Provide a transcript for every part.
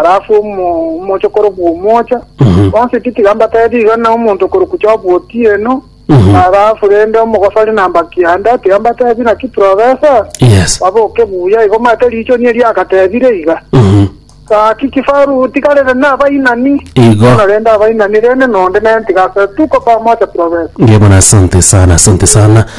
Alafu omo- omocha okorokwa omocha bonsi titiga mbatebie iga na omonto okorokwa jobu otieno alafu rende omogosori namba kianda tiga mbatebie naki profesa Yes. baboke buya igo mate richoni erio agatebire iga Mhm. gaki kifaru tigarere nabainani Igo. bono rende abainani rende nonde nere tigasoe tuko pamoja profesa Ngebona asante sana, asante sana.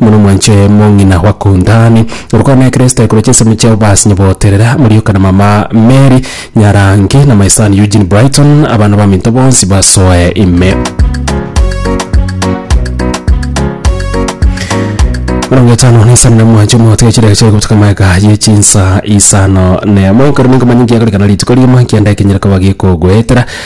Mono mwanche mong'ina gwakuntani. Orokwana na Ekeresto ekoroche ensemo chiao basi nyaboterera morioka na mama Mary Nyarange na my son Eugene Brighton abana baminto bonsi basoe ime. Mirongo etano na isano na mwanche omogote gechireka chiaye gotuka maega ye chinsa isano nemo ekero ninkomanya ngiakorikana rituko riuma kianda ekenyera koba gikogwetera